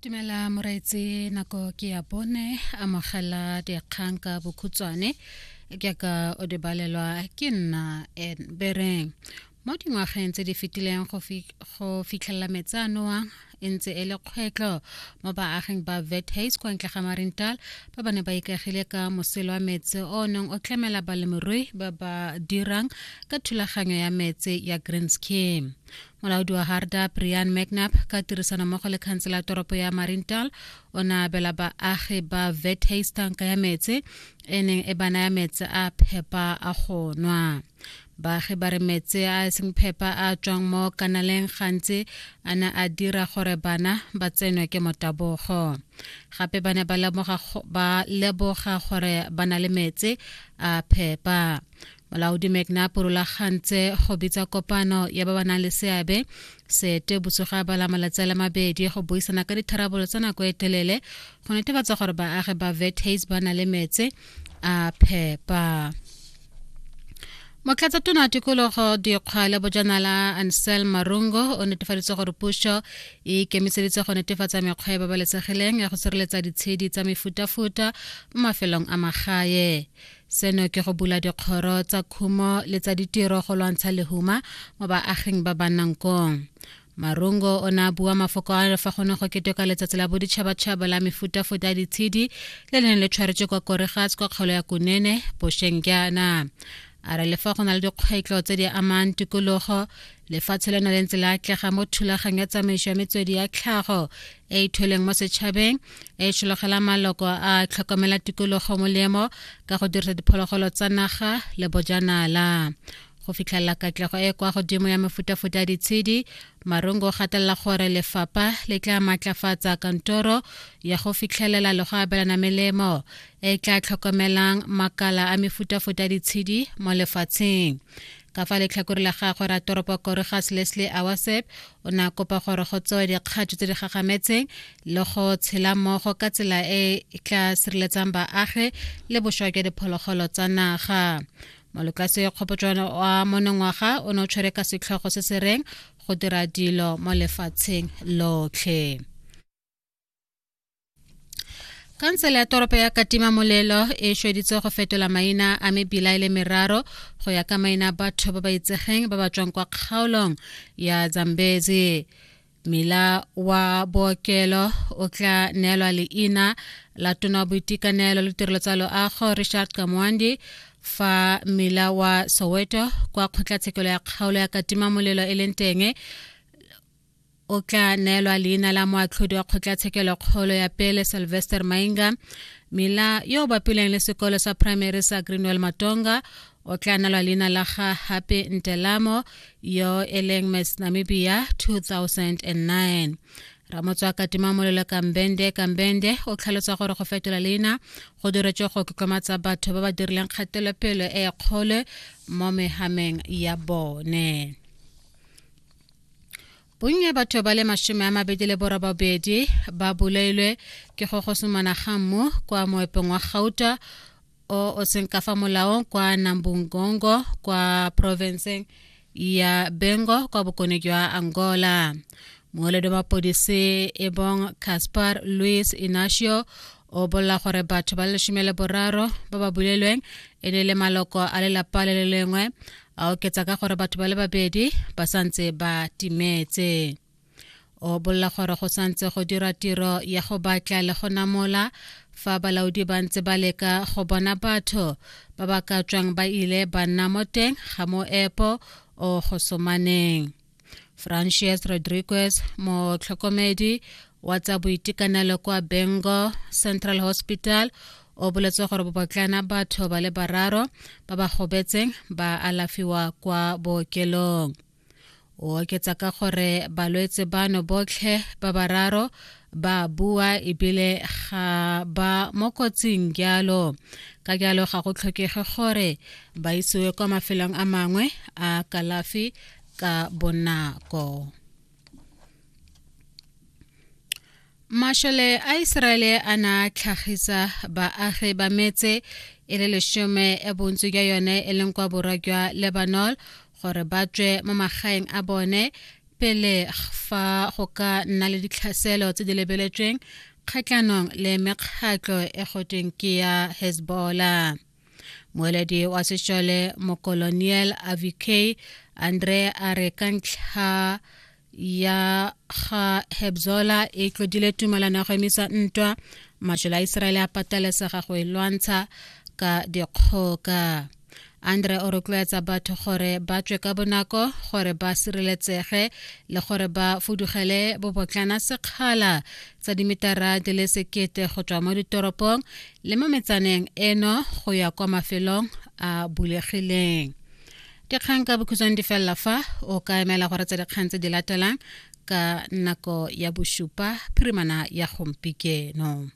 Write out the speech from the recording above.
dumela moraetse nako ke ya bone amogela dikgang ka bokhutswane ke ka o di balelwa ke nna bereng mo dingwageng tse di fetileng go fitlhelela metsi a nowang e ntse e le kgwetlho mo baaging ba vethas kwa ntle ga marintal ba ba ne ba ikagile ka moselo wa metsi o neng o tlamela balemirui ba ba dirang ka thulaganyo ya metsi ya green scheme molaodi wa harda brian mcnap ka tirisanommogo le khansela toropo ya marintal o ne a abela baagi ba vethays tanka ya metse e neng e ba naya metse a phepa a go nwa baagi ba re metse a seng phepa a tswang mo kanaleng gantsi a ne a dira gore bana ba tsenwe ke motabogo gape ba ne ba leboga gore ba na le metse a phepa molaodi mcnap o rulagantse go bitsa kopano ya ba ba nang le seabe sete botsogo a bala malatsi a le mabedi go buisana ka ditharabololo tsa nako e telele go netefatsa gore baagi ba vetas ba na le metse a phepa motlatsatona tikologo dikgwa le bojanala ansel marungo o netefaditse gore puso e ikemiseditse go netefatsa mekgwa e babalesegileng ya go sireletsa ditshedi tsa mefutafuta mo mafelong a magae seno ke go bula dikgoro tsa khumo le tsa ditiro go lwantsha lehuma mo baaging ba ba nnang kong marungo o ne a bua mafoko a fa go ne go keteka letsatsi la boditšhabatšhaba la mefutafuta ya ditshedi le le neng le tshwaretswe kwa koregas kwa kgaolo ya kunene bošeng jaana a re lefa go na le dikgwetlho tse di amang tikologo lefatshe le na le ntse le atlega mo thulagang ya tsamaiso ya metswedi ya tlhago e e thweleng mo setšhabeng e tšhologela maloko a tlhokomela tikologo molemo ka go dirisa diphologolo tsa naga le bojanala go fitlhelela katlego e kwa godimo ya mefutafuta ya ditshedi marungo o gatelela gore lefapha le tla maatlafatsa kantoro ya go fitlhelela le go abelana melemo e tla tlhokomelang makala a mefutafuta ya ditshedi mo lefatsheng ka fa letlhakore la gagwe ra toropo koregas leslie awasep o ne a kopa gore go tsewe dikgatso tse di gagametseng le go tshela mmogo ka tsela e e tla sireletsang baagi le bošwa jwa diphologolo tsa naga molokase kgopotšwana wa monongwaga o ne o tshwere ka setlhogo se se reng go dira dilo mo lefatsheng lotlhe khansele ya toropo ya katima molelo e šweditse go fetola maina a mebila e le meraro go ya ka maina a batho ba ba itsegeng ba ba tswang kwa kgaolong ya zambezi mila wa bookelo o tla neelwa leina la tona wa boitekanelo le tirelo tsa loago richard kamwandi fa mila wa soweto kwa kgotlatshekelo ya kgaolo ya katima molelo e leng teng o tla neelwa leina la moatlhodi wa kgotlatshekelokgolo ya pele sylvester mainga mila yo o bapileng le sekolo sa primary sa greenwell matonga o tla neelwa leina la ga hape ntelamo yo e leng miss namibia 2009 ramotswa katima molelo kambende kambende o tlhalosa gore go fetola leina go diretswe go keklomatsa batho ba ba dirileng kgatelopele e kgolo mo mehameng ya bone bonya batho ba le mashome a mabedi le borobabedi ba bolailwe ke go gosomana ga mmu kwa moepong wa gauta o o seng ka fa molaong kwa nambungongo kwa porofenseng ya bengo kwa bokone jwa angola mooledi wa mapodisi e bong caspar louis inacio o bolela gore batho ba leshome le boraro ba ba bulelweng e ne le maloko a lelapa le le lengwe a oketsa ka gore batho ba le babedi ba santse ba timetse o bolla gore go santse go dira tiro ya go batla le go namola fa balaodi ba ntse ba leka go bona batho ba ba ka tswang ba ile ba nna mo teng ga moepo o go somaneng Francis Rodriguez motlhokomedi wa tsa boitekanelo kwa Bengo Central Hospital o boletse gore bobotlana batho ba le bararo ba ba gobetseng ba alafiwa kwa bookelong o oketsa ka gore balwetse bano botlhe ba bararo ba bua ebile ga ba mo kotsing jalo ka jalo ga go tlhokege gore ba isiwe kwa mafelong a mangwe a kalafi ka bonako Mashole a Iseraele a na tlhagisa baagi ba metse e le leshome e bontsi jwa yone e leng kwa borwa jwa Lebanon gore ba tswe mo magaeng a bone pele fa go ka nna le ditlhaselo tse di lebeletsweng kgatlhanong le mekgatlho e gotweng ke ya hezbollah moeledi wa sešole mokoloniel avk andre a re ka ntlha ya ga hebzola e tlodile tumalano ya go emisa ntwa mašole a iseraele a patelesega go e lwantsha ka dikgoka andre o rotloetsa batho gore ba tswe ka bonako gore ba sireletsege le gore ba fudugele bobotlana sekgala tsa dimetara di le sekete go tswa mo ditoropong le mo metsaneng eno go ya kwa mafelong a bulegileng dikgang ka bokhutshwane di felela fa o ka emela gore tse dikgang tse di latelang ka nako ya bosupa phirimana ya gompikeno